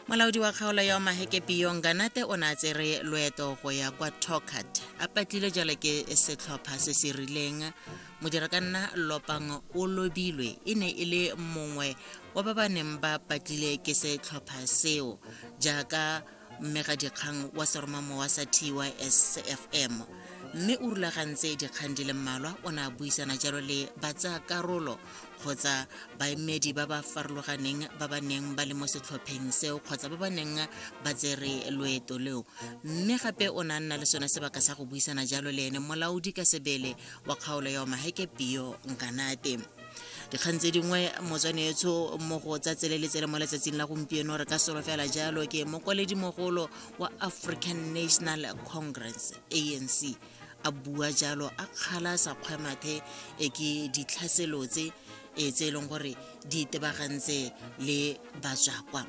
molaodi wa kgaolo ya omaheke piyong ganate o ne a tsere loeto go ya kwa tocat a patlile jalo ke setlhopha se se rileng modira ka nna lopang o lobilwe e ne e le mongwe wa ba ba neng ba patlile ke setlhopha seo jaaka mme ga dikgang wa seromamowa sa tysfm mme o rulagantse dikgang di le mmalwa o ne a buisana jalo le batsayakarolo kgotsa baemedi ba ba farologaneng ba ba neng ba le mo setlhopheng seo kgotsa ba ba neng ba tsere loeto leo mme gape o ne a nna le sone sebaka sa go buisana jalo le ene molaodi ka sebele wa kgaolo ya omaheke pio nkanate dikgang tse dingwe motswane etsho mo go tsa tseleletsele mo letsatsing la gompieno re ka solo fela jalo ke mogolo wa african national congress anc a bua jalo a kgala sa kgwemathe e ke ditlhaselo tse e tse e leng gore di itebagantse le batswakwa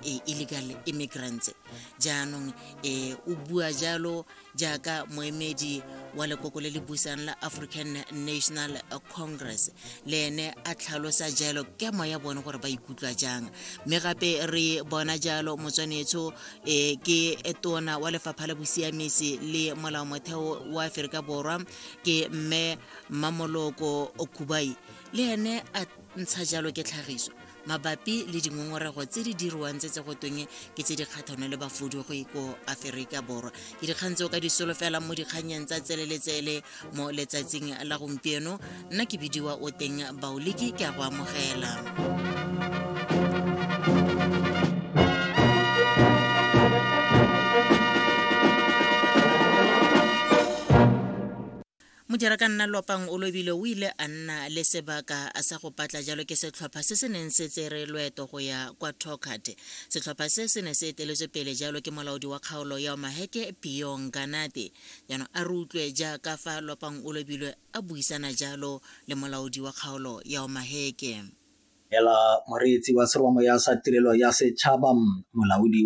e, illegal immigrants jaanong e, o bua jalo jaaka moemedi wa lekoko le le busang la african national congress le ene a tlhalosa jalo kemo ya bone gore ba ikutlwa jang mme gape re bona jalo motswanetsho e ke tona wa lefapha la bosiamisi le molao motheo wa aforika borwa ke mme mamoloko okubai le ene a ntsha jalo ke tlhagiso mabapi le dingongorego tse di dirwang tse tse go tweng ke tse di kgathano le bafudugi ko aferika borwa ke dikgang tse o ka di solofelang mo dikganyeng tsa tseleletsele mo letsatsing la gompieno nna ke bidiwa o teng baoliki ke a go amogela Mojarakanna Lopang o lobile o ile a nna le sebaka a sa go patla jalo ke setlhopha se se neng se tsere loeto go ya kwa Torkard. Setlhopha se se ne se eteletswe pele jalo ke molaodi wa kgaolo ya Omaheke Piyong Ganate. Jaanong a re utlwe jaaka fa Lopang o lobilwe a buisana jalo le molaodi wa kgaolo ya Omaheke. Ela moreetsi wa seromamoya sa Tirelo ya Setšhaba, molaodi wa.